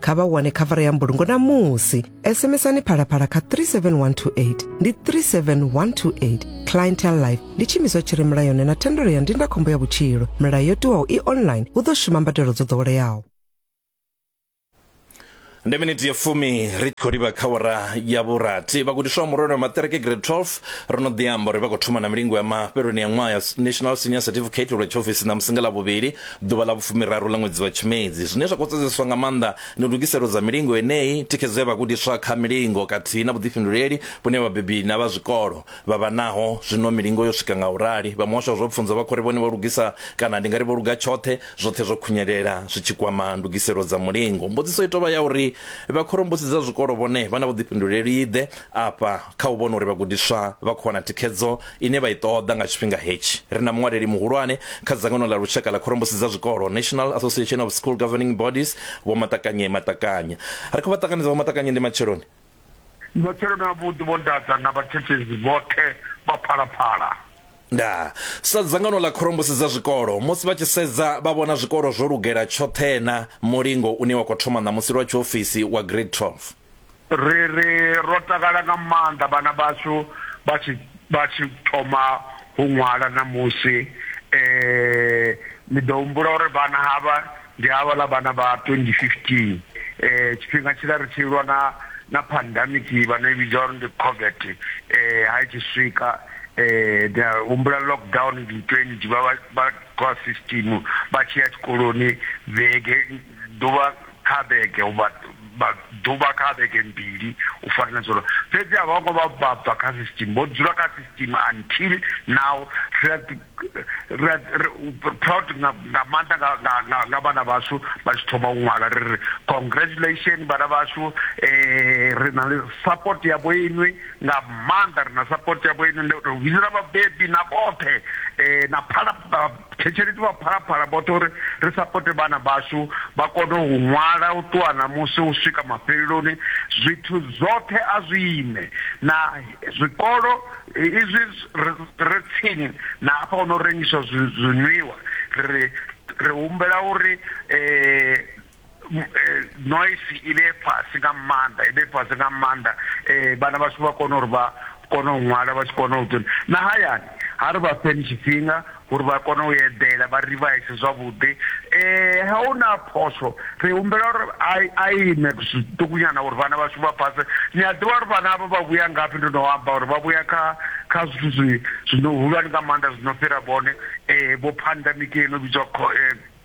kha vha wane khavara ya mbulungo na musi sms-ani phalaphala kha 37128 ndi 37128 clientel life ndi tshimiswa tshi re mulayoni na thendelo ya ndindakhombo ya vhutshilo milayo yo tiwaho i online hu ḓo shuma mbadelo dzo ḓoweleaho ndi miniti ya fumi ri khou livha kha wara ya vhurathi vhagudiswa murole wa maṱereke grade 12 ro no ḓi amba uri vha khou thoma na milingo ya mafheloni ya ṅwaha ya national senior certificate lwa tshiofisi na musinga ḽa vhuvhili Ḓuvha ḽa vhufumiraru ḽa ṅwedzi wa Tshimedzi. Zwine zwa khou sedzeswa nga maanḓa ndi ndugiselo dza milingo yeneyi, thikhedzo ya vhagudiswa kha milingo khathihi na vhuḓifhinduleli vhune vhabebi na vha zwikolo vha vha naho. Zwino milingo yo swika nga u rali, vha muhasho wa zwa pfunzo vha khou ri vhone vho lugisa kana ndi nga ri vho luga tshoṱhe, zwoṱhe zwo khunyelela zwi tshi kwama ndugiselo dza mulingo. Mbudziso i tou vha ya uri vhakhorombusi dza zwikolo vhone vha na vhuḓifhinduleli-ḓe Afha, kha u vhona uri vhagudiswa vha khou wana thikhedzo ine vha i ṱoḓa nga tshifhinga hetshi, ri na muṅwaleli muhulwane kha dzangano ḽa lushaka ḽa khorombusi dza zwikolo, National Association of School Governing Bodies, Vho Matakanye Matakanye. Ri khou vha ṱanganedza Vho Matakanye, ndi matsheloni. Ndi matsheloni avhuḓi, Vho Ndaza na vhathetshelesi vhoṱhe vha Phalaphala. Ndaa. Sa dzangano ḽa khorombusi dza zwikolo, musi vha tshi sedza vha vhona zwikolo zwo lugela tshoṱhee-na mulingo une wa khou thoma ṋamusi lwa tshiofisi wa Grade 12. ri ri ro takala nga maanḓa vhana vhashu vha tshi vha tshi thoma u ṅwala ṋamusi um ni ḓo humbula uri vhana havha ndi havhaḽa vhana vha 2015 um tshifhinga tshiḽa ri tshi lwa na na pandemic vha no i vhidza uri ndi covet um ha i tshi swika um da humbula lockdown ndi 20 vha vha vha khou a system vha tshi ya tshikoloni vhege ḓuvha kha vhege u vha vha ḓuvha kha vhege mbili u fana na zwolo fhedzi a vha ngo vha vha bva kha system vho dzula kha system until now ri a ri a proud nga nga maanḓa nga nga nga vhana vhashu vha tshi thoma u ṅwala ri ri congratulation vhana vhashu eh ri na support ya vho inwi nga maanḓa ri na support ya vho inwi ndo vhidza vhabebi na vhoṱhe eh na phala Thetshelesi vha Phalaphala vhoṱhe uri ri sapote vhana vhashu vha kone u ṅwala u ṱuwa ṋamusi u swika mafheleloni, zwithu zwoṱhe a zwi ime na zwikolo izwi ri re tsini na hafha ho no rengiswa zwinwiwa ri ri humbela uri. eh, noise i vhe fhasi nga maanḓa i vhe fhasi nga maanḓa um vhana vhashu vha kone uri vha kone u ṅwala vha tshi kona u tuni na hayani ha ri vha fheni tshifhinga uri vha kone u eḓela vha rivise zwavhuḓi um ha u na phosho ri humbela uri a ime zwiṱukunyana uri vhana vhashu vha phase ni a ḓivha uri vhana avho vha vhuya ngafhi ndo no amba uri vha vhuya kha kha zwithu zwi zwino hulwane nga maanḓa zwino fhira vhone um vho phandamikeni o vhidzwa eh,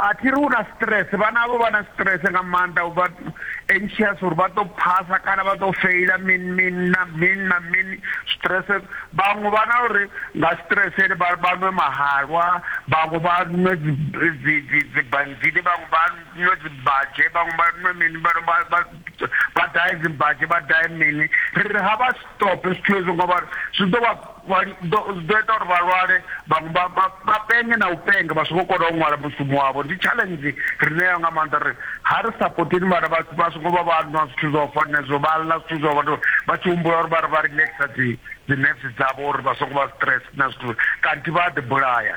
A thi ri u na stress, vhana havho vha na stress nga maanḓa, u vha anxious uri vha ḓo phasa kana vha ḓo feila mini mini na mini na mini. Stress, vhaṅwe vha na uri nga stress ende vha vha nwe mahalwa, vhaṅwe vha nwe dzi dzi dzi dzi banzini, vhaṅwe vha nwe dzi mbadzhe, vhaṅwe vha nwe mini, vha vha vha vha dahe dzi mbadzhe, vha dahe mini. Ri ri ha vha stop zwithu hezwo ngori zwi ḓo vha. Vha ḓo ḓo ita uri vha lwale vhaṅwe vha vha vha penge na u penga vha songo kona u ṅwala mushumo wavho ndi challenge ri nayo nga maanḓa uri ha ri sapoteni vhana vha vha songo vha vha nwa zwithu zwo fana zwo vha ḽa zwithu zwo vha vha tshi humbula uri vha ri vha relaxer dzi dzi nerves dzavho uri vha songo vha stress na zwithu kanthi vha a ḓi bulaya.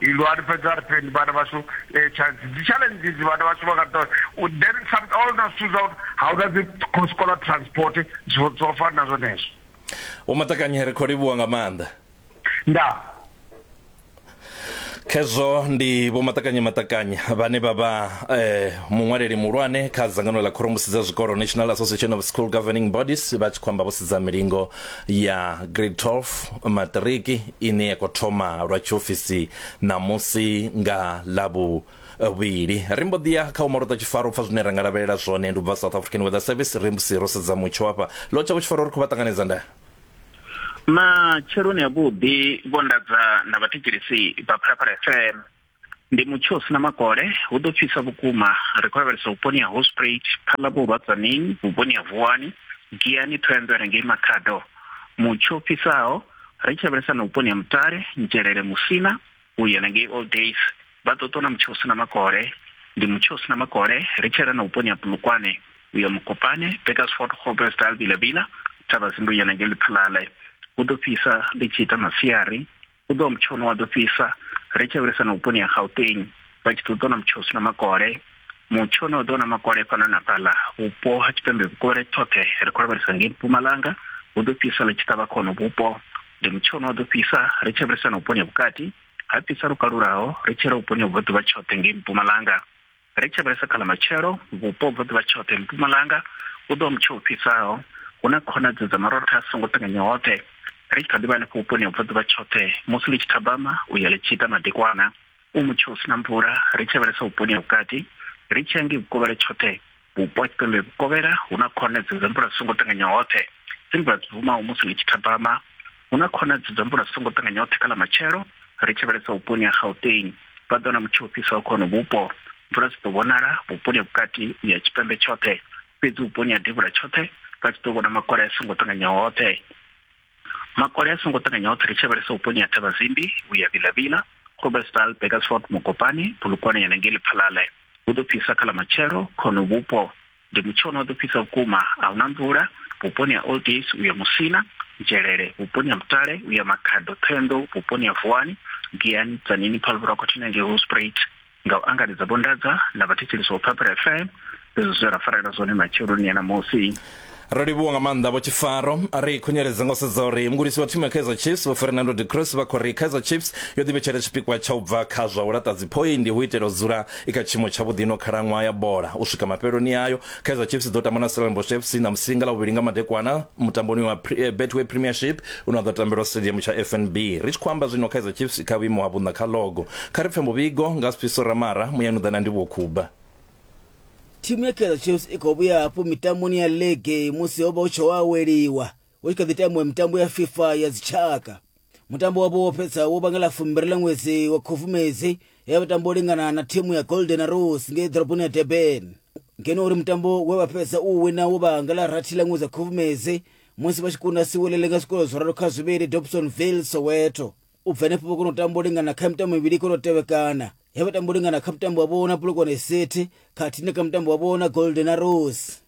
Ilu ari fhedzi ari phendi vhana vhashu eh, chance dzi challenge dzi vhana vhashu vha nga ṱoḓa then some all na zwithu zwa uri ha una dzi scholar transport zwo zwo fana na zwenezwo Vho Maṱakanye ri khou livhuwa nga maanḓa. nda Khezwo ndi Vho Maṱakanye Maṱakanye vhane vha vha eh, muṅwaleli muhulwane kha dzangano ḽa khorombusi dza zwikolo National Association of School Governing Bodies vha tshi khou amba vho sedza milingo ya grade 12 maṱiriki ine ya khou thoma lwa tshiofisi ṋamusi nga ḽavhu vhili ri mbo ḓi ya kha u malota tshifaro u pfa zwine ra nga lavhelela zwone ndi u bva south african weather service ri musi ro sedza mutsho hafha lo tsha vhutshifaro ri khou vha ṱanganedza nda matsheloni avhuḓi vho ndadza na vhathetshelesi vha phalaphala fm ndi mutsho u si na makole hu ḓo fhisa vhukuma ri khou lavhelesa vhuponi ha hosprat phala vhurwadzanini vhuponi ha vuwani giani thohoyanḓou ya ngei makhado mutsho fhisaho ri tshi lavhelesa na vhuponi ha mutale nzhelele musina u ya na ngei all days vha ḓo ṱona mutsho u si na makole ndi mutsho u si na makole ri tshela na vhuponi ha bulukwane u ya mukopane bakersford hobesdal vilavila thavha zindu ya na ngei liphalale hu ḓo fhisa ḽi tshi ita masiari u ḓo mutsho une wa ḓo fhisa ri tshi lavhelesa na vhuponi ha gauteng vha tshi ḓo ḓona mutsho u si na makole mutsho une wa ḓo na makole fhano na fhaḽa vhupo ha tshipembe vhukovhela tshoṱhe ri khou lavhelesa ngei mpumalanga hu ḓo fhisa ḽi tshi ṱavha khono vhupo ndi mutsho une wa ḓo fhisa ri tshi lavhelesa na vhuponi ha vhukati ha fhisa lwo kalulaho ri tshi ra vhuponi ha vhubvaḓuvha tshoṱhe ngei mpumalanga Ri tshi lavhelesa kha ḽa matshelo, vhupo bva ḓuvha tshoṱhe mpumalanga hu ḓo mutsho u fhisaho, hu na khonadzeo dza marotha a songo ṱanganya hoṱhe, ri tshi kha ḓi vha henefho vhuponi ha bva ḓuvha tshoṱhe musi ḽi tshi thabama u ya ḽi tshi ita madekwana. U mutsho u si na mvula, ri tshi lavhelesa vhuponi ha vhukati, ri tshi ya ngei vhukovhela tshoṱhe, vhupo ha tshipembe vhukovhela hu na khonadzeo dza mvula songo ṱanganya hoṱhe, dzi mvula dzi bvumaho musi ḽi tshi thabama. Hu na khonadzeo dza mvula dzi songo ṱanganya hoṱhe kha ḽa matshelo ri tshi vhalesa vhuponi ha Gauteng. Vha ḓo na mutsho u fhisaho kha hono vhupo. Mvula dzi ḓo vhonala vhuponi ha vhukati u ya tshipembe tshoṱhe, fhedzi vhuponi ha devhula tshoṱhe vha tshi ḓo vhona makole a songo ṱanganya hoṱhe. Makole a songo ṱanganya hoṱhe ri tshi vhalesa vhuponi ha Thavhazimbi u ya Vilavila, Groblersdal, Burgersfort, Mokopane, Polokwane ya na ngei Lephalale. Hu ḓo fhisa kha ḽa matshelo kha hono vhupo. ndi mutshino wa ḓo fhisa vhukuma a huna mvula vhuponi ha old days uya musina nzhelele vhuponi ha mutale uya makhado ṱhenḓo vhuponi ha vuwani giyani tsanini phaluvhura khothina ngei hosprit nga u angaredza vhondadza na vhathetshelisi wa phaphela fm izwo zwe ra farela zwone matsheloni ya ṋamusi ro livhuwa nga maanḓa vho tshifaro ri khunyeledza nga u sedza uri mugudisi wa thimu ya kaizer chiefs vho fernando de cruz vha khou ri kaizer chiefs yo ḓivhetshela tshipikwa tsha u bva kha zwa u laṱa dziphoindi hu itela u dzula i kha tshiimo tshavhuḓi ino khalaṅwaha ya bola u swika mafheloni ayo kaizer chiefs i ḓo tamba na stellenbosch fc na musinga ḽa vhuvhili nga madekwana mutamboni wa eh, betway premiership une wa ḓo tambelwa stadium tsha fnb ri tshi khou amba zwino kaizer chiefs kha vhuimo ha vhuṋa kha logo kha ri pfe muvhigo nga siphiso ramara muyani u ḓa na ndivhuwo khuba thimu ya kaizer chiefs i khou vhuya hafhu mitamboni ya lege musi ho vha hu tshi ho aweliwa hu tshi kha ḓi tambiwa mitambo ya fifa ya dzitshaka mutambo wavho wo fhedza wo vhangela fumbiri ḽa ṅwedzi wa khufumedzi ya vhatambo u lingana na thimu ya golden arrows ngei ḓoroboni ya durban ngeno uri mutambo we vha fhedza u wina wo vhangela rathi ḽa ṅwedzi wa khufumedzi musi vha tshi kunda siwelele nga zwikolo zwo ralo kha zwivhili dobson ville soweto u bva henefho vho kona u tamba u lingana kha mitambo mivhili kona u tevhekana he vha tamba u lingana kha mutambo wavho na bulokwane city khathihi na kha mutambo wavho na golden arrows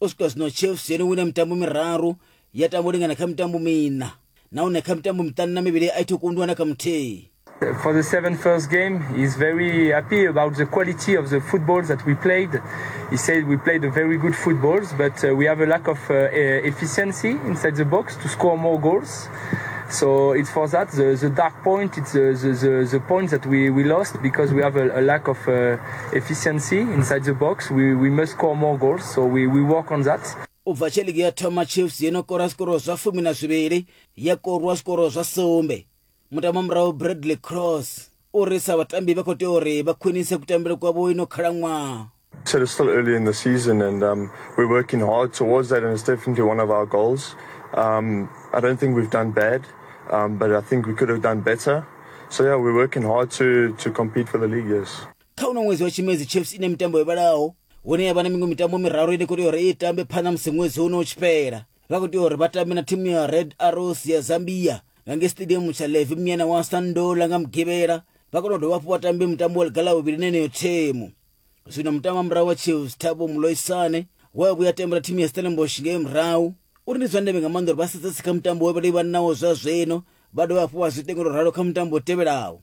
u swika zwino chiefs yo no wina mitambo miraru ya tamba u lingana kha mitambo miṋa nahone kha mitambo miṱanu na mivhili a itho kundiwa na kha muthihi for the seven first game. He's very happy about the quality of the footballs that we played. He said we played very good footballs, but uh, we have a lack of uh, e-, efficiency inside the box to score more goals. So it's for that the, the dark point. It's the, the, the, point that we, we lost because we have a, a lack of uh, efficiency inside the box. We, we must score more goals, so we, we work on that. u bva tshe ligi ya thoma chiefs yo no kora zwikororo zwa fumi na zwivhili ya korwa zwikororo zwa sumbe mutamba murahu bradley cross uri sa vhatambi vha khou tea uri vha khwinise kutambele kwavho ino khalaṅwaha said it's still early in the season and um, we're working hard towards that and it's definitely one of our goals. Um, I don't think we've done bad, um, but I think we could have done better. So yeah, we're working hard to, to compete for the league, yes. kha uno ṅwedzi wa tshimedzi chiefs ine mitambo yo vhalaho hune ya vha na miṅwe mitambo miraru ine kuri uri i tambe phanḓa musi ṅwedzi uno u tshi fhela vha khou tea uri vha tambe na thimu ya red arrows ya zambia nga nge stadium tsha levi mnyana wa sandola nga mugivhela vha kona u dovha hafhu vha tambe mutambo wa ligala vhuvhili na eneyo thimu zwino mutambo wa murahu wa chiefs thabo muloisane wa vhuya tembela thimu ya stellenbosh ngei murahu uri ndi zwa ndeme nga maanḓa uri vha sedzesi kha mutambo we vha livhanawo zwa zwino vha dovha hafhu vha zwi tengela ralo kha mutambo u tevhelaho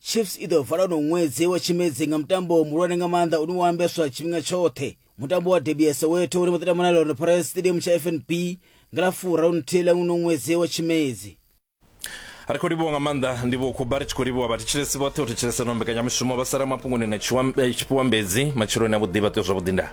chiefs i ḓo vala uno ṅwedzi wa tshimedzi nga mutambo muhulwane nga maanḓa une wa ambeswa tshifhinga tshoṱhe mutambo wa debi ya soweto une vha ḓo tamba na lorne pirates stadium tsha fnb nga ḽa furaru nthihi ḽa uno ṅwedzi wa tshimedzi ri khou livhuwa nga maanḓa ndivho khuba ri tshi khou livhuwa vhathetshelesi vhoṱhe u thetshelesa no mbekanyamushumo vha sala mafhungoni na eh, tshifhiwambedzi matshiloni a vhuḓi vha tea zwavhuḓi ndaa